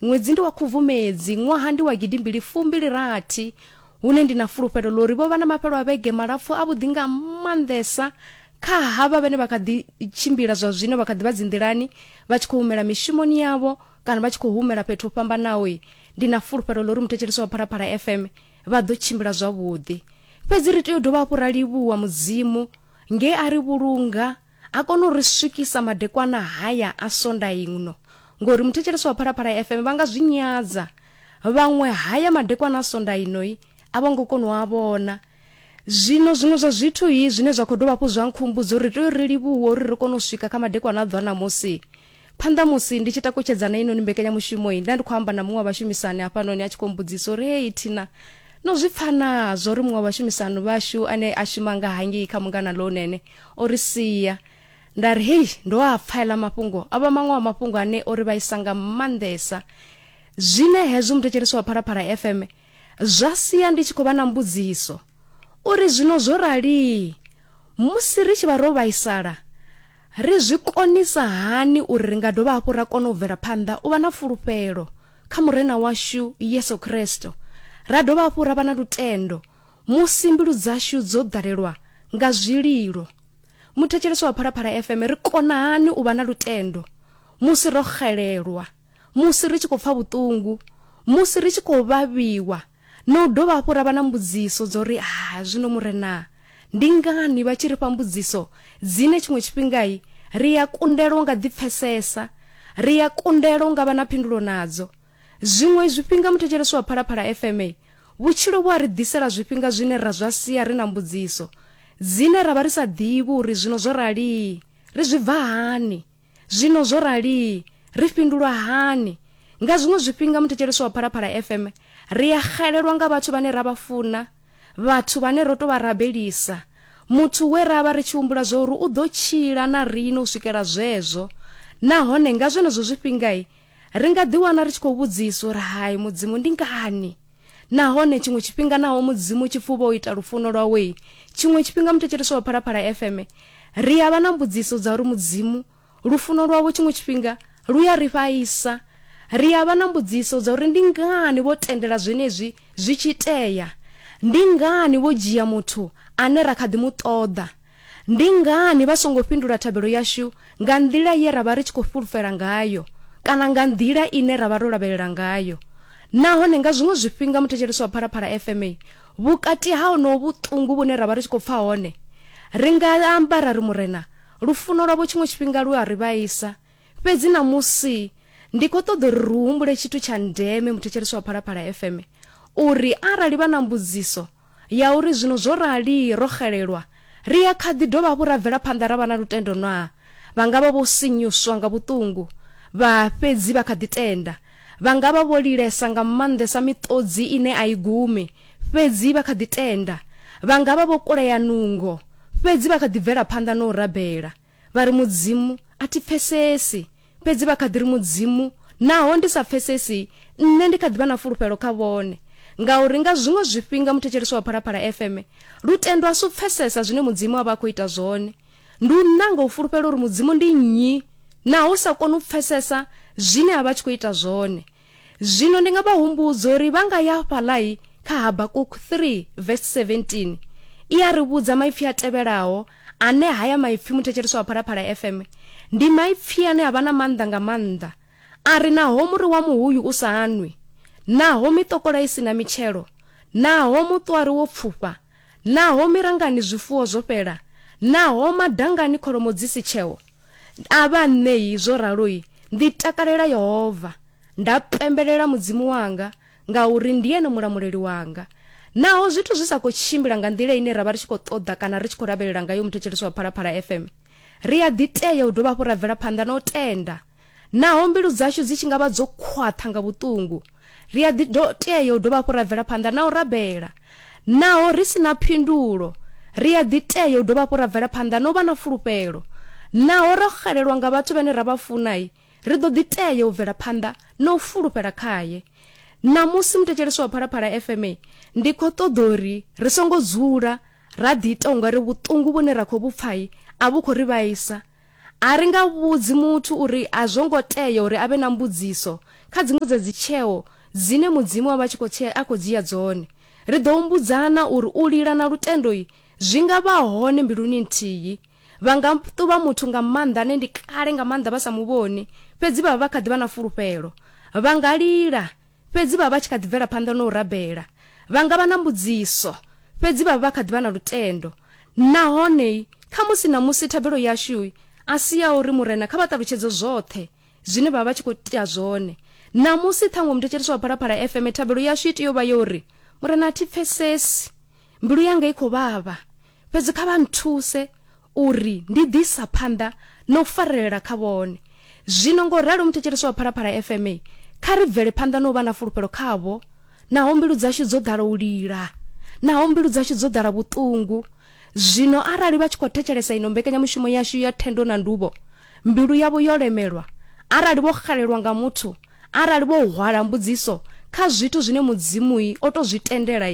Ṅwedzi ndi wa Khubvumedzi, ṅwaha ndi wa gidimbili fumbili rathi, hune ndi na fulufhelo ḽa uri vho vha na mafhelo a vhege malapfu avhuḓi nga maanḓesa kha havha vhane vha kha ḓi tshimbila zwa zwino vha kha ḓi vha dzinḓilani vha tshi khou humela mishumoni yavho kana vha tshi khou humela fhethu ho fhambanaho. Ndi na fulufhelo ḽa uri muthetshelesi wa Phalaphala FM vha ḓo tshimbila zwavhuḓi. Fhedzi ri tea u dovha hafhu ra livhuwa Mudzimu nge a ri vhulunga a kona u ri swikisa madekwana haya a sonda ino, ngori muthetshelesi wa Phalaphala FM vha nga zwi nyadza, vhaṅwe haya madekwana a sonda ino i a vho ngo kona u a vhona. Zwino zwiṅwe zwa zwithu i zwine zwa khou dovha hafhu zwa nkhumbudza uri ri tea uri ri livhuwe uri ri kone u swika kha madekwana a ḓuvha ṋamusi, Phanḓa musi ndi tshi takutshedzana heinoni mbekanyamushumo-i, nda ndi khou amba na muṅwe wa vhashumisani hafhanoni a tshi khou mbudzisa uri, Hei Tina, no zwi pfa naa zwa uri muṅwe wa vhashumisani vhashu ane a shuma nga hangei kha Mungana Lounene o ri sia? Nda ri, Hei, ndo a pfa aḽa mafhungo. O vha maṅwe a mafhungo ane o ri vhaisa nga maanḓesa. Zwine hezwo muthetshelesi wa Phalaphala FM zwa sia ndi tshi khou vha na mbudziso. U ri, Zwino zwo rali, musi ri tshi vha ro vhaisala, ri zwi konisa hani uri ri nga dovha hafhu ra kona u bvela phanḓa u vha na fulufhelo kha Murena washu Yesu Kristo, ra dovha hafhu ra vha na lutendo musi mbilu dzashu dzo ḓalelwa nga zwililo? Muthetshelesi wa Phalaphala FM, ri kona hani u vha na lutendo musi ro xelelwa? musi ri tshi khou pfa vhuṱungu, musi ri tshi khou vhavhiwa na u dovha hafhu ra vha na mbudziso dzo ri, Ha, zwino Murena, ndi ngani vha tshi ri fha mbudziso dzine tshiṅwe tshifhingai ri a kundelwa nga ḓi pfesesa, ri a kundelwa nga vha na phindulo nadzo? Zwiṅwe zwifhinga muthetshelesi wa Phalaphala FM, vhutshilo vhu a ri ḓisela zwifhinga zwine ra zwa sia ri na mbudziso dzine ra vha ri sa ḓivhi uri zwino zwo rali ri zwi bva hani. Zwino zwo rali ri fhindulwa hani? Nga zwiṅwe zwifhinga muthetshelesi wa Phalaphala FM ri a xelelwa nga vhathu vhane ra vha funa, vhathu vhane ro tou vha rabelisa, muthu we ra vha ri tshi humbula zwa uri u ḓo tshila na riṋe u swikela zwezwo. Nahone nga zwenezwo zwifhinga, Ri nga ḓiwana ri tshi khou vhudziswa uri hai Mudzimu ndi ngani? Nahone tshiṅwe tshifhinga naho Mudzimu tshi pfuba u ita lufuno lwawe, tshiṅwe tshifhinga muthetshelesi wa Phalaphala FM ri a vha na mbudziso dza uri Mudzimu lufuno lwavho tshiṅwe tshifhinga lu ya ri vhaisa. Ri a vha na mbudziso dza uri ndi ngani vho tendela zwenezwi zwi tshi itea? Ndi ngani vho dzhia muthu ane ra kha ḓi mu ṱoḓa? Ndi ngani vha songo fhindula thabelo yashu nga nḓila ye ra vha ri tshi khou fhulufhela ngayo kana nga nḓila ine ra vha ro lavhelela ngayo? Nahone nga zwiṅwe zwifhinga muthetshelesi wa Phalaphala FM vhukati ha honoho vhuṱungu vhune ra vha ri tshi khou pfa hone, ri nga amba ra ri, Murena, lufuno lwavho tshiṅwe tshifhinga lu a ri vhaisa. Fhedzi ṋamusi ndi khou ṱoḓa uri ri humbule tshithu tsha ndeme, muthetshelesi wa Phalaphala FM, uri arali vha na mbudziso, ya uri, Zwino zwo rali ro xelelwa, ri a kha ḓi dovha hafhu ra bvela phanḓa ra vha na lutendo naa? Vha nga vha vho sinyuswa nga vhuṱungu, vha fhedzi vha kha ḓi tenda. Vha nga vha vho lilesa nga maanḓesa miṱodzi ine a i gumi, fhedzi vha kha ḓi tenda. Vha nga vha vho kulea nungo, fhedzi vha kha ḓi bvela phanḓa na u rabela. Vha ri Mudzimu a thi pfesesi, fhedzi vha kha ḓi ri Mudzimu naho ndi sa pfesesi, nṋe ndi kha ḓi vha na fulufhelo kha vhone. Ngauri nga zwiṅwe zwifhinga muthetshelesi wa Phalaphala FM lutendo a si u pfesesa zwine Mudzimu a vha a khou ita zwone. Ndi u nanga u fulufhela uri Mudzimu ndi nnyi naho u sa koni u pfesesa zwine a vha a tshi khou ita zwone. Zwino ndi nga vha humbudza uri vha nga ya fhaḽai kha Habakuk 3 vesi 17 i a ri vhudza maipfi a tevhelaho ane haya maipfi muthetsheleswa wa Phalaphala FM ndi maipfi ane a vha na maanḓa nga maanḓa a ri naho muri wa muhuyu u sa anwi naho mitokola i si na mitshelo naho muṱwari wo pfufha Naho mirangani zwifuwo zwo fhela, naho madangani kholomo dzi si tsheho, a vha ṋei zwo ralo-i, ndi takalela Yehova, nda pembelela Mudzimu wanga, ngauri ndi ene mulamuleli wanga. Naho zwithu zwi sa khou tshimbila nga nḓila ine ra vha ri tshi khou ṱoḓa kana ri tshi khou lavhelela ngayo muthetshelesi wa Phalaphala FM, ri a ḓi tea u dovha hafhu ra bvela phanḓa na u tenda. Naho mbilu dzashu dzi tshi nga vha dzo khwaṱha nga vhuṱungu, ri a ḓi tea u dovha hafhu ra bvela phanḓa na u rabela. Naho ri si na phindulo, ri a ḓi tea u dovha hafhu ra bvela phanḓa na u vha na fulufhelo. Naho ro xelelwa nga vhathu vhane ra vha funa, ri ḓo ḓi tea u bvela phanḓa na u fulufhela khae. Ṋamusi, muthetshelesi wa Phalaphala FM, ndi khou ṱoḓa uri ri songo dzula ra ḓiita u nga ri vhuṱungu vhune ra khou vhu pfa a vhu khou ri vhaisa. A ri nga vhudzi muthu uri a zwo ngo tea uri a vhe na mbudziso kha dziṅwe dza dzitsheo dzine Mudzimu a vha tshi khou a khou dzhia dzone. Ri ḓo humbudzana uri u lila na lutendo zwi nga vha hone mbiluni nthihi. Vha nga ṱuvha muthu nga maanḓa ane ndi kale nga maanḓa vha sa mu vhoni, fhedzi vha vha vha kha ḓi vha na fulufhelo. Vha nga lila Fhedzi vha vha vha tshi kha ḓi bvela phanḓa na u rabela. Vha nga vha na mbudziso, fhedzi vha vha vha kha ḓi vha na lutendo. Nahone khamusi ṋamusi thabelo yashu a si ya uri Murena kha vha ṱalutshedze zwoṱhe zwine vha vha vha tshi khou ita zwone. Ṋamusi ṱhaṅwe muthetshelesi wa Phalaphala FM thabelo yashu i tea u vha ya uri, Murena, a thi pfesesi. Mbilu yanga i khou vhavha. Fhedzi kha vha nthuse uri ndi ḓi isa phanḓa na u farelela kha vhone. Zwino, ngo ralo muthetshelesi wa Phalaphala FM, kha ri bvele phanḓa na u vha na fulufhelo khavho, naho mbilu dzashu dzo ḓala u lila, naho mbilu dzashu dzo ḓala vhuṱungu. Zwino, arali vha tshi khou thetshelesa ino mbekanyamushumo yashu ya Thendo na Nduvho, mbilu yavho yo lemelwa, arali vho xelelwa nga muthu, Arali vho hwala mbudziso kha zwithu zwine Mudzimu o tou zwi tendela,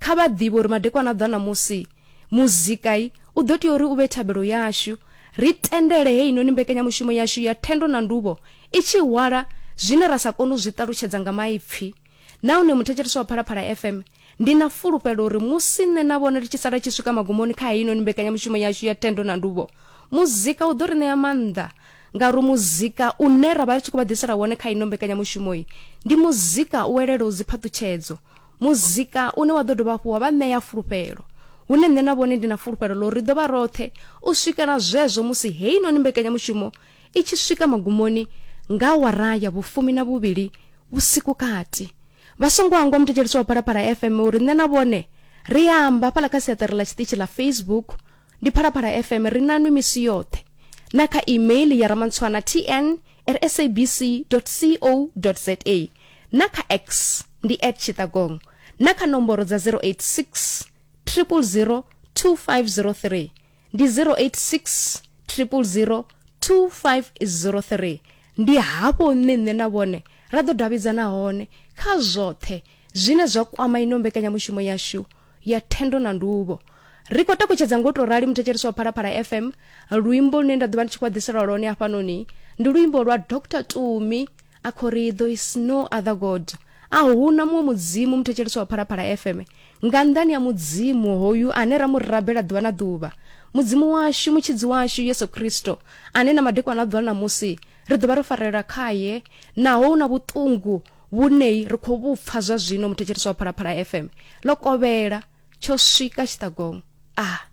kha vha ḓivhe uri madekwana a ḓa ṋamusi, muzika u ḓo tea uri u vhe thabelo yashu. Ri tendele heinoni mbekanyamushumo yashu ya Thendo na Nduvho i tshi hwala zwine ra sa koni u zwi ṱalutshedza nga maipfi. Nahone muthetshelesi wa Phalaphala FM Ndi na fulufhelo uri musi nṋe na vhone ri tshi sala tshi swika magumoni kha heinoni mbekanyamushumo yashu ya thendo na nduvho, muzika u ḓo ri ṋea maanḓa ngauri muzika une ra vha ri tshi khou vha ḓisela wone kha ino mbekanyamushumo iyi ndi muzika u elelaho dziphaṱutshedzo, muzika une wa ḓo dovha hafhu wa vha ṋea fulufhelo hune nṋe na vhone ndi na fulufhelo ḽo ri ḓo vha roṱhe u swikela zwezwo musi heinoni mbekanyamushumo i tshi swika magumoni nga awara ya vhufumi na vhuvhili vhusiku kati vha songo hangwa muthetshelisi wa phalaphala fm uri nṋe na vhone ri a amba hafhaḽa kha siaṱari ḽa tshiṱitshi ḽa facebook ndi phalaphala fm ri na nwi misi yoṱhe na kha email ya ramantswana tn at sabc co za na kha x ndi at tshitagong na kha nomboro dza 086 000 2503 ndi 086 000 2503 ndi hafho nṋe nṋe na vhone ra ḓo davhidzana hone kha zwoṱhe zwine zwa kwama ino mbekanyamushumo yashu ya thendo na nduvho ri khou takutshedza ngo tou rali muthetshelesi wa phalaphala fm luimbo lune nda ḓo vha ndi tshi khou ḓiselwa lwone hafhanoni ndi luimbo lwa dr tumi A Corrie, There is no other God, A hu na muṅwe Mudzimu, muthetshelesi wa Phalaphala FM, nga nnḓani ha Mudzimu hoyu ane ra mu rabela ḓuvha na ḓuvha, Mudzimu washu, Mutshidzi washu, Yesu Kristo, ane na madekwana a ḓuvha na ṋamusi ri ḓo vha ro farelela khae, naho hu na vhuṱungu vhune ri khou vhu pfa zwa zwino, muthetshelesi wa Phalaphala FM, ḽo kovhela, tsho swika tshiṱagongo. A.